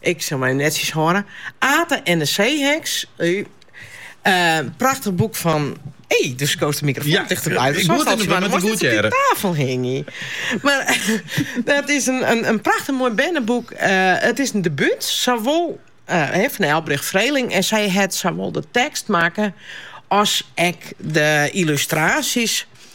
Ik sil my netjes hâlde. Ate en de seeheks. Prachtich boek fan. Doe't soe de mikrofoan tichterby de tafel hingje. Mar dat is in prachtich moai berneboek. It is in debút sawol fan Elbrich Vreeling en sy hat sawol de tekst makke as ek de yllustraasjes.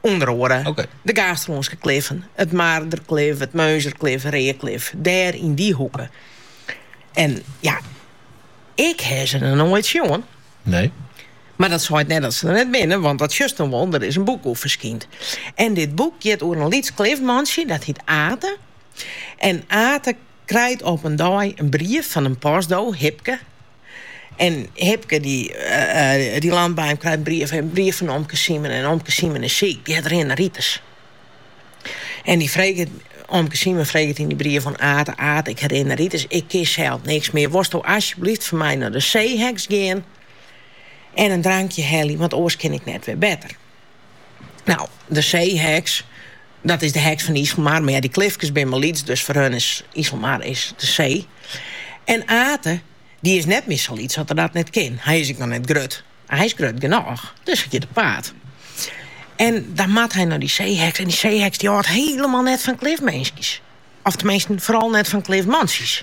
Under oare de Gaasterlânske kliffen, it Marderklif, it Murnzerklif, Reaklif, dêr yn dy hoeke. En ja, ik hie se noch noait sjoen. Nee. Mar dat seit net dat se der net binne, want dat sjochst dan wol, der is in boek oer ferskynd. En dit boek giet oer in lyts klifmantsje, dat hyt Ate. En Ate krijt op in dei in brief fan in postdo, Hipke, En Hipke dy dy landt by him, krijt brief en brief fan omke Simen en omke Simen is siik, dy hat rinderitis. En dy freget omke Simen freget yn dy brief oan Ate, Ate ik ha rinderitis, ik kin sels niks mear, wolsto asjeblyft foar my nei de seeheks gean en in drankje helje, want oars kin ik net wer better. Nou, de seeheks, dat is de heks fan de Iselmar, mar ja, dy klifkes binne mar lyts, dus foar hun is Iselmar is de see. En Ate, dy is net mear sa lyts dat er dat net kin. Hy is ek noch net grut, mar hy is grut genôch, dus hy giet op paad. En dan moat hy nei dy seeheks en dy seeheks dy hâldt hielendal net fan klifminskjes. Of teminsten, foaral net fan klifmantsjes.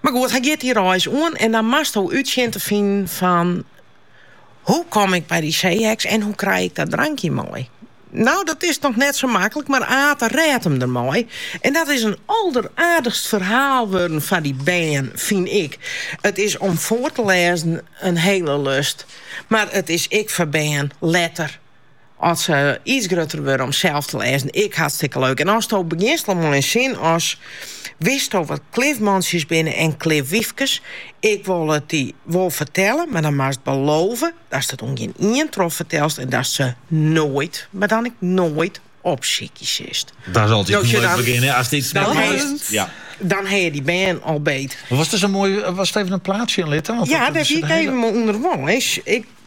Mar goed, hy giet dy reis oan en dan moatsto út sjen te finen fan hoe kom ik by dy seeheks en hoe krij ik dat drankje mei. No, dat is noch net sa maklik, mar Ate rêdt him dermei. En dat is in alderaardichst ferhaal wurden foar dy bern, fyn ik. It is om foar te lêzen in hele lust, mar it is ek foar bern letter. As se iets grutter wurde om sels te lêzen, ek hartstikke leuk. En asto begjinst al mei in sin as, Witsto wat klifmantsjes binne en klifwyfkes? Ik wol it dy wol fertelle, mar dan moatst belove datst it oan gjin ien trochfertelst en datst se noait, mar dan ek noait, opsykje silst. Dat is altyd in leuk begjin, hè, ast iets net meist. Dan ha je dy bern al beet. Wolst even in plaatsje litte? Ja, dat wie ik even, mar ûnder wol.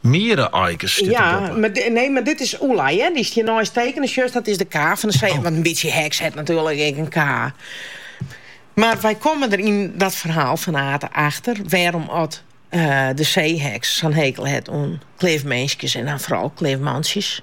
Miere-aikes stiet derboppe. Nee, mar dit is Oelei, hear. Dy stiet der neist tekene. Sjochst, dat is de ka fan de see. Want in bytsje heks hat natuerlik ek in ka. Mar wy komme der yn dat ferhaal fan Ate achter wêrom oft de seeheks sa'n hekel hat oan klifminskes en dan foaral klifmantsjes.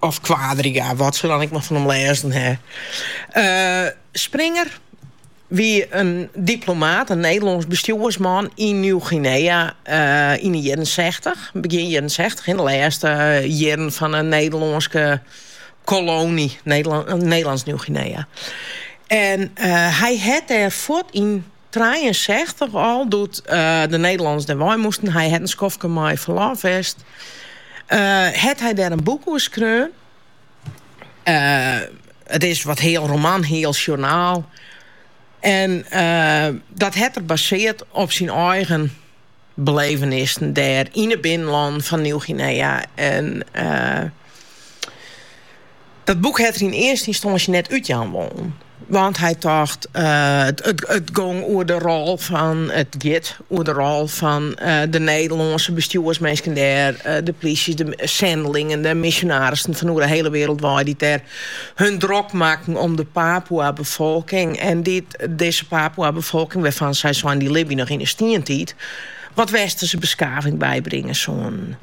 Of Quadriga, wat se dan ek mar fan him lêzen ha. Springer wie in diplomaat, in Nederlânsk bestjoersman yn Nieuw-Guinea yn 'e jierren sechtich, begjin jierren sechtich, yn 'e lêste jierren fan 'e Nederlânske koloany Nederlânsk Nieuw-Guinea. En hy hat dêr fuort yn Trijeensechstich al doe't de Nederlanners dêr wei moasten. Hy hat in skoftke mei ferlof west. Hat hy dêr in boek oer skreaun. It is wat heal roman, heal sjoernaal. En dat hat er basearre op syn eigen. Belevenissen dêr yn 'e binnenlannen fan Nieuw-Guinea. En dat boek hat er yn earste ynstânsje net útjaan wollen. Want hy tocht, it gong oer de rol fan, it giet oer de rol fan de Nederlânske bestjoersminsken dêr, de plysjes, de sendelingen, de misjonarissen fan oer 'e hiele wêreld wei, dy't dêr hun drok makken om de Papoea-befolking en dy't, Dizze Papua-befolking, wêrfan't sy seinen dy libje noch yn 'e stientiid, wat Westerse beskaving bybringe soene.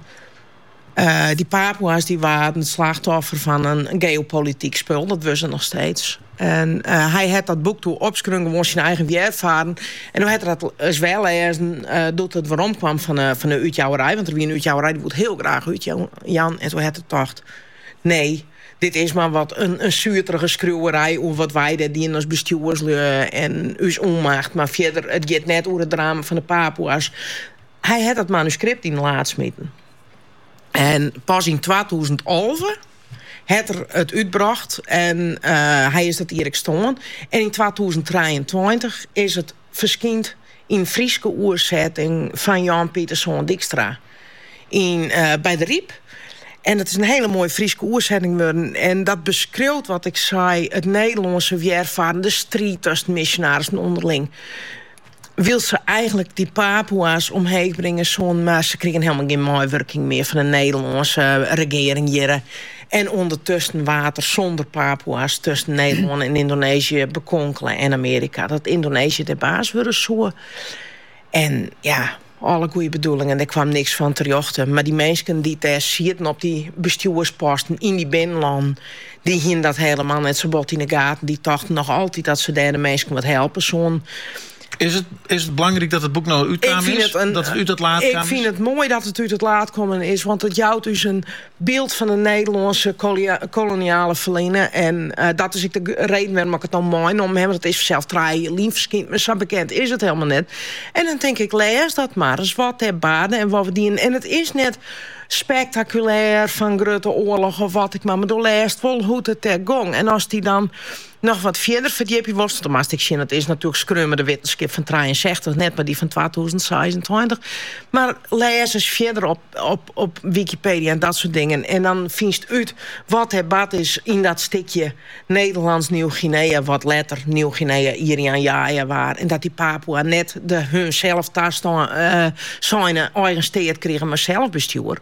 Dy Papua's dy waarden it slachtoffer fan in geopolityk spul, dat wurde se noch steeds. En hy hat dat boek doe opskreaun gewoan syn eigen wjerfarren. En doe hat er dat ris wer lêzen doe't it werom kwam fan 'e útjouwerij, want der wie in útjouwerij dy woe it hiel graach útjaan, en doe hat er tocht, nee, Dit is mar wat in suterige skriuwerij oer wat wy dêr dienen as bestjoerslju en ús ûnmacht, mar fierder, it giet net oer it drama fan de Papoeas. Hy hat dat manuskript yn it laad smiten en pas yn twatûzen alve hat er it útbrocht en hy is dat jier ek stoarn en yn twatûzen trijeentweintich is it ferskynd yn Fryske oersetting fan Jan Pieterszoon Dykstra yn, by DeRyp. En it is in hiele moaie Fryske oersetting wurden. En dat beskriuwt wat ik sei, it Nederlânske wjerfarren, de striid tusken misjonarissen ûnderling. Wylst se eigenlik dy Papoea's omheech bringe soenen, mar se krigen hielendal gjin meiwurking mear fan de Nederlânske regearing hjirre. en ûndertusken waard er sûnder Papoea's tusken Nederlân en Yndoneezje bekonkele en Amearika dat Yndoneezje dêr baas wurde soe. En ja, alle goede bedoelingen, der kwam niks fan terjochte. Mar dy minsken dy't dêr sieten op dy bestjoersposten yn dy binnenlannen, dy hienen dat helemaal net sa bot yn de gaten. Dy tochten noch altyd dat se dêr de minsken wat helpe soenen. Is it, is it belangryk dat it boek no útkaam is? Dat it út it laad kaam? Ik fyn it moai dat it út it laad kommen is, want it jout ús in Byld fan it Nederlânske koloniale ferline en dat is ek de reden wêrom ik it no meinommen haw, want it is fansels trije jier lyn ferskynd, mar sa bekend is it hielendal net. En dan tink ik, lês dat mar ris, wat dêr barde en wat we dienen. En it is net spektakulêr fan grutte oarloch of wat ek mar, mar do lêst wol hoe't it dêr gong. En as dy dan noch wat fierder ferdjipje wolst, dan moatst ek sjen dat is natuerlik skreaun mei de wittenskip fan trijeensechstich net, mar dy fan twatûzen seisentweintich. Mar lês ris fierder op, op, op Wikipedia en dat soort dingen en dan fynst út wat der bard is yn dat stikje Nederlânsk Nij-Guinea, wat letter Nij-Guinea, Irian Jaya, waard en dat dy Papua net de har sels taseine eigen steat krige, mei selsbestjoer.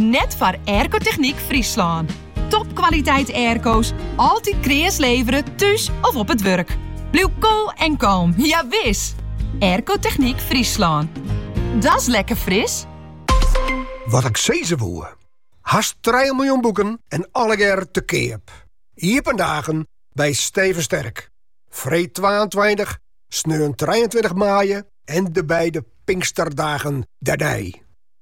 Net foar Aircotechniek Fryslân. Topkwaliteit airco's, altyd kreas levere, thús of op it wurk. Bliuw koel en kalm, ja wis! Aircotechniek Fryslân. Da's lekker fris! Wat ik sizze woe. Hast 3 miljoen boeken en allegear te keap. Iepen dagen by Steven Sterk. Freed 22, sneon 23 maaie en de beide Pinksterdagen dernei.